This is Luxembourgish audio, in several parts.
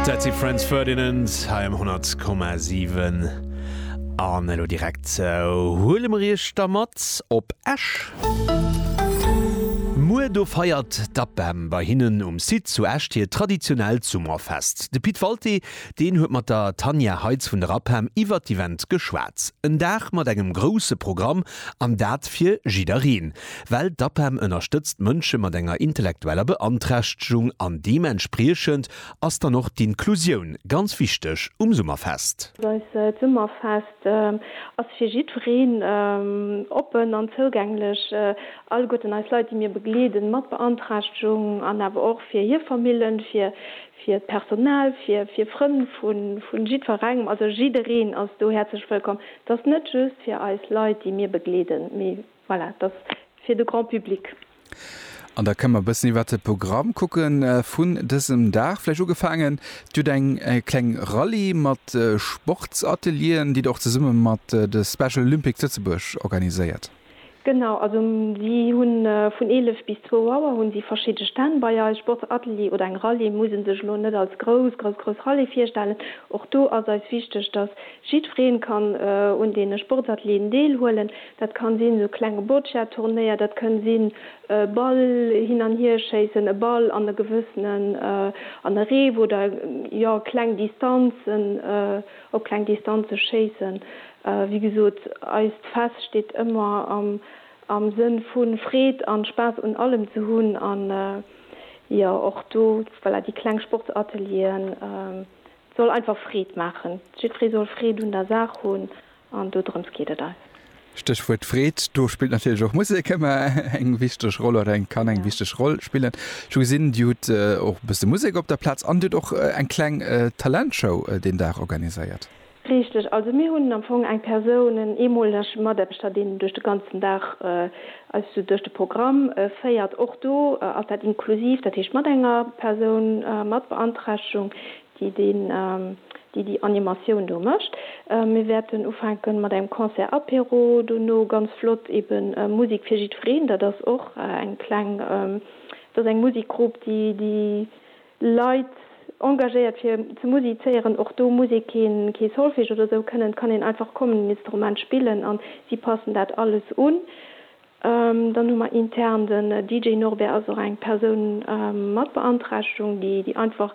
Dat si Franz Ferdinand hei um 100,7. An elo direkt huele mer Iech da mat op Esch. Muer do feiert d'APEM bei hinnen um Site zu Esch hiert traditionellt Summerfest. De Pit Walté, deen huet mat der Tanja Heitz vun der APEM iwwert d'Event geschwat. En Dag mat engem grousse Programm an dat fir jiddereen. Well d'APEM ënnerstëtzt Mënsche mat enger intellektueller Beanträchtegung an deementspriechend ass dann och d'Inklusioun ganz wichteg um Summerfest. Eist Summerfest ass fir jiddwereen oppen an zougänglech, alleguerten eis Leit, déi mir begleeden, mat Beanträchtegung an awer och fir hir Famillen, fir d'Personal, fir Frënn vu jiddwerengem. Also jiddereen ass do häerzlech wëllkomm. Et ass net just fir eis Leit, déi mir begleeden, mee. Voilà, et ass fir de Grand public. An da kënne mer e bëssen iwwert de Programm kucke vun dësem Dag. Vläicht ugefaangen, Dir hutt eng kleng Rallye mat Sportsatelieren, déi Der och zesumme mat de Special Olympics Lëtzebuerg organiséiert. Genau, also si hu vun 11 bis 2 Auer hu si verschidde Stänn bei eis. Sportsatelier oder eng Rallye muss ee sech elo net als grouss, grouss, grouss Rallye virstellen. Och do ass eis wichteg, dass jiddweree kann un deene Sportsatelieren deelhuelen. Dat kann sinn esou klenge Boccia-Turnéier, dat kënn sinn e Ball hin an hier schéissen, e Ball an e gewëssenen, an e Reef oder jo kleng Distanzen, op kleng Distanze schéissen. Wéi gesot, eist Fest steet ëmmer am Sënn vu Freed an Spaass un allem ze hunn an jo och do, voilà, déi kleng Sportsatelieren, soll einfach Freed maachen. Jiddweree soll Freed un der Saach hunn An dodrëms geet et eis. Stéchwuert Freed, do spillt natierlech och Musek ëmmer eng wichteg Roll oder eng kann eng wichteg Roll spillen. Ech hu gesinn, Dir hutt och e bësse Musek op der Plaz an Dir hutt och eng kleng Talentshow deen Dag organiséiert. Richteg. Also mir hunn am Fong eng Persoun, en eemoleg Mataarbechter, deen duerch de ganzen Dag eis esou duerch de Programm féiert. Och do ass dat inklusiv, dat heescht mat enger Persoun mat Beanträchtegung, déi deen, déi déi Animatioun do mécht. Mir wäerten ufänke mat engem Concert Apéro, dono ganz flott eben Musik fir jiddwereen. Dat ass och eng kleng, dat ass eng Musikgrupp, déi déi Leit engagéiert fir ze musizéieren. Och do muss ee keen, kee Solfège oder esou kënnen, et kann een einfach kommen, en Instrument spillen an si passen dat alles un. Dann hu mer intern den DJ Norbert ass och eng Persoun mat Beanträchtegung, déi déi einfach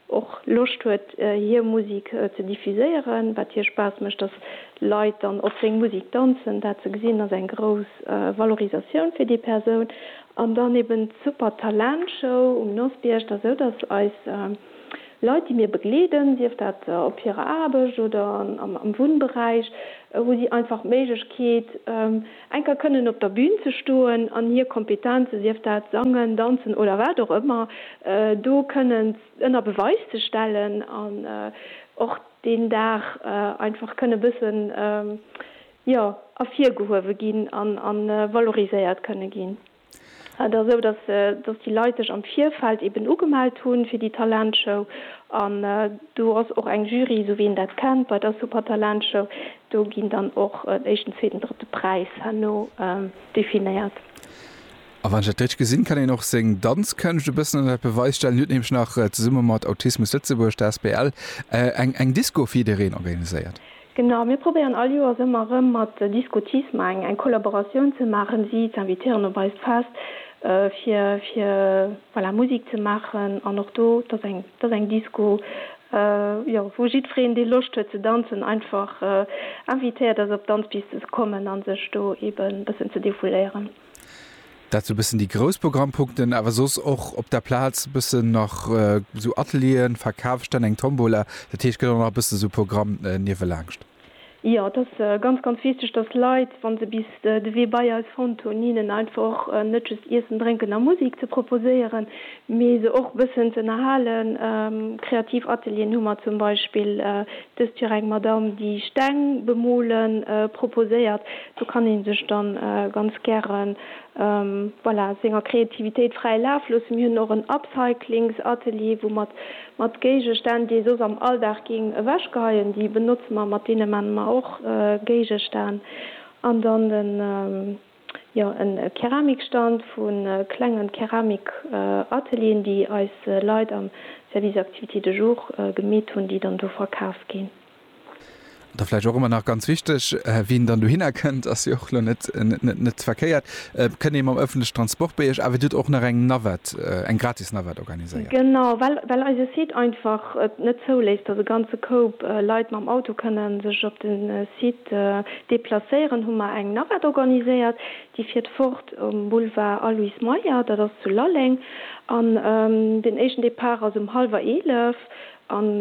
och Loscht huet hir Musik ze diffuséieren, wat hir Spaass mécht, dass Leit dann op seng Musik danzen. Dat ze gesinn ass eng grouss Valorisatioun fir déi Persoun. An dann eben d'Super Talent Show um Nosbierg. Dass esou dass eis Leit déi mir begleeden, sief dat op hirer Aarbecht oder am Wunnberäich, hu si einfach d'Méiglechkeet, Enker kënnen op der Bün ze stoen an hir Kompetenze, sief dat sangen, danzen oder wat och ëmmer, do kënnen ënner Beweis ze stellen an och deen Dag einfach kënne bëssen, jo, ervirgehuewe ginn an valoriséiert kënne ginn. Et ass esou, dass déi Leit sech am Virfeld eben ugemellt hunn fir déi Talentshow. An do ass och eng Jury, esou wéi een dat kennt bei der Supertalentshow. Do ginn dann och en éischten, zweeten, drëtte Präis herno definéiert. A wann ech dat richteg gesinn, kann een och seng Danzkënscht e bëssen ënnert Beweis stellen. Dir hutt nämlech nach zesumme mat Autismus Lëtzebuerg, der asbl, eng Disco fir jiddereen organiséiert. Genau, mir probéieren all Joers ëmmer erëm mat Discotisme eng eng Kollaboratioun ze maachen, si ze invitéieren op eist Fest, fir fir voilà Musik ze maachen an och do, et ass eng et ass eng Disco, jo, wou jiddwereen, dee Loscht huet ze danzen, einfach invitéiert ass op d'Danzpiste ze kommen a sech do eeben e bëssen ze defouléieren. Dat sou bëssen déi grouss Programmpunkten, awer soss och op der Plaz bëssen nach sou Atelieren, Verkafsstänn, eng Tombola. Dat heescht gëtt och nach e bëssen esou Programm niewelaanscht. Jo, et ass ganz, ganz wichteg, dass d'Leit, wa se bis de Wee bei eis fonnt hunn, hinnen einfach och net just Iessen, Drénken a Musek ze proposéieren, mee se och bëssen z'ënnerhalen. Kreativ Atelieren hu mer zum Beispill dëst Joer eng Madamm, déi Steng bemole proposéiert. Do kann ee sech da ganz gäre voilà senger Kreativitéit fräi Laf loossen. Mir hunn och en Upcyclingsatelier, wou mer mat Géigestänn, déi ee soss am Alldag géing ewechgeheien, déi benotze mer, mat deene maache mer och Géigestänn. An dann den. Jo, e Keramikstand vu klenge Keramikatelieren, déi eis Leit am Service Activités de jour gemeet hunn, déi dann do verkaf ginn. Da vläicht och ëmmer nach ganz wichteg, wien dann dohinner kënnt, ass jo och elo net net verkéiert, kënn ee mam ëffentleche Transport bei Iech, awer Dir hutt och nach eng Navette, eng gratis Navette organiséiert. Genau, well well eise Site einfach et net zouléisst, dass e ganze Koup Leit mam Auto kënne sech op de Site De Deplacéieren hu mer eng Navette organiséiert, déi fiert fort um Boulevard Aloyse Meyer, dat ass zu Lalleng, an den éischten Depart ass um hallwer eelef an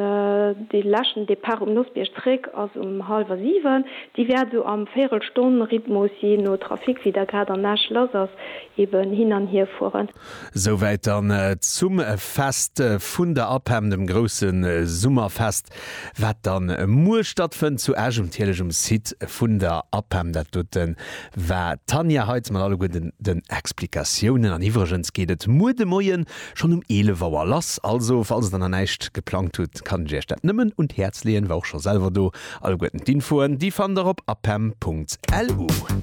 de leschten Depart um Nossbierg zréck ass um hallwer siwen. Déi wäert esou am Véierelstonn-Rhythmus, jee no Trafic, wéi der grad an Esch lass ass, eben hin an hier fueren. Souwäit dann zum Fest vun der APEM, dem grousse Summerfest, wat da muer stattfënnt zu Esch um Thieleschem Site vun der APEM. Dat dote war d'Tanja Heitz mat alleguerten den Explikatiounen. An iwwregens geet et muer de Moien schonn um 11 Auer lass. Also falls der nach näischt geplangt hutt, kann ech iech dat nëmmen un d'Häerz leeën. War och scho selwer do. Alleguerten d'Infoen, déi fannt der op apem.lu.